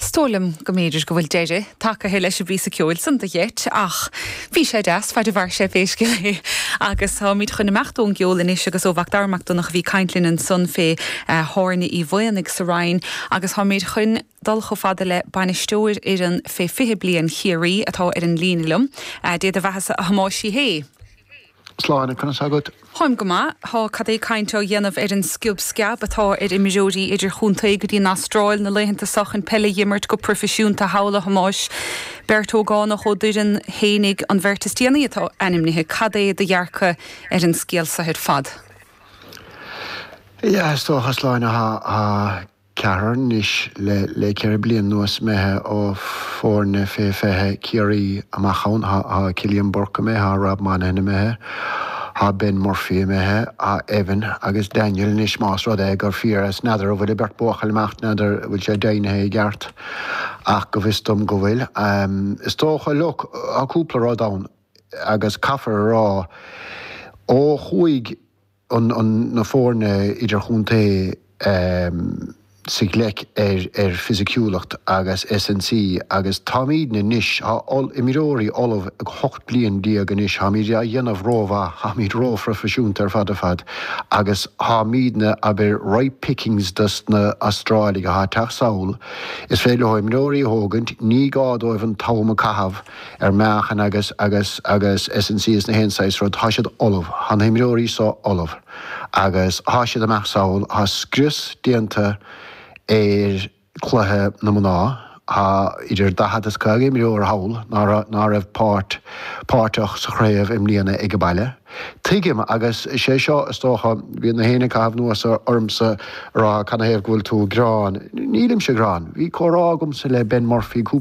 Is dóigh liom go mb'fhéidir go bhfuil deireadh tagtha leis an bpíosa ceoil san do gheit, ach bhí sé deas, fad a mhair sé, pé scéal é. Agus táimid chun imeacht ón gceol anois, agus ó Mhac Dara Mac Donncha a bhí ag caint linn ansan fé Thábhairne Uí Mhaonaigh sa Rinn, agus táimid chun dul chomh fada le bainisteoir fhoireann fé 20 bliain Chiarraí, atá ar an líne liom. Dé do bheathasa, a Thomáis Uí Shé! Sláine, conas agat? Táim go maith. Tá cad é caint á dhéanamh ar an sciob sceab atá ar imreoirí idirchontae go dtí an Astráil na laethanta seo chun peil a dh'imirt go proifisiúnta thall, a Thomáis. Beirt ógánach ó d'fhoireann fhéinig an bheirt is déanaí atá ainmnithe. Cad é do dhearcadh ar an scéal seo ar fad? Is dócha, Sláine, ceathrar anois le le ceithre bliain anuas imithe ó foirne fé 20 Ciarraí amach ann. Thá thá Cillian Burke imithe, thá Rob Monahan imithe, thá Ben Murphy imithe, thá Evan agus Daniel anois más rud é gur fíor is n'fheadar a bhfuil an beirt buachaill ag imeacht n'fheadar a bhfuil sé deimhnithe i gceart ach go bhfios dom go bhfuil. Is dócha, look, thá cúpla rud ann agus caithfear a rá ó chuaigh. na foirne idirchontae sa ghleic ar fisiciúlacht agus S&C agus táimidne anois, tá imreoirí ullamh ag 18 bliain anois, táimid á dhéanamh rómhaith, táimid róphroifisiúnta ar fad ar fad agus táimidne, abair, ripe pickings dos na Astrálaigh atá ag teacht sall. Is féidir leo imreoirí a thógaint, ní gá dóibh an t-am a caitheamh. ar meáchan agus, agus, agus S&C is nach aon saghas rud, tá siad ullamh, thá na himreoirí so ullamh agus thá siad ag imeacht sall, thá scrios déanta ar cluiche na mná, thá idir daichead is caoga imreoir thall ná raibh, ná raibh páirt, páirteach sa chraobh i mbliana age baile. Tuigim agus sé seo is dócha, bhí nach éinne ag caitheamh anuas ormsa a rá canathaobh go bhfuil tú ag gearán, nílimse ag gearán, bhí comhrá agamsa le Ben Murphy cúpla.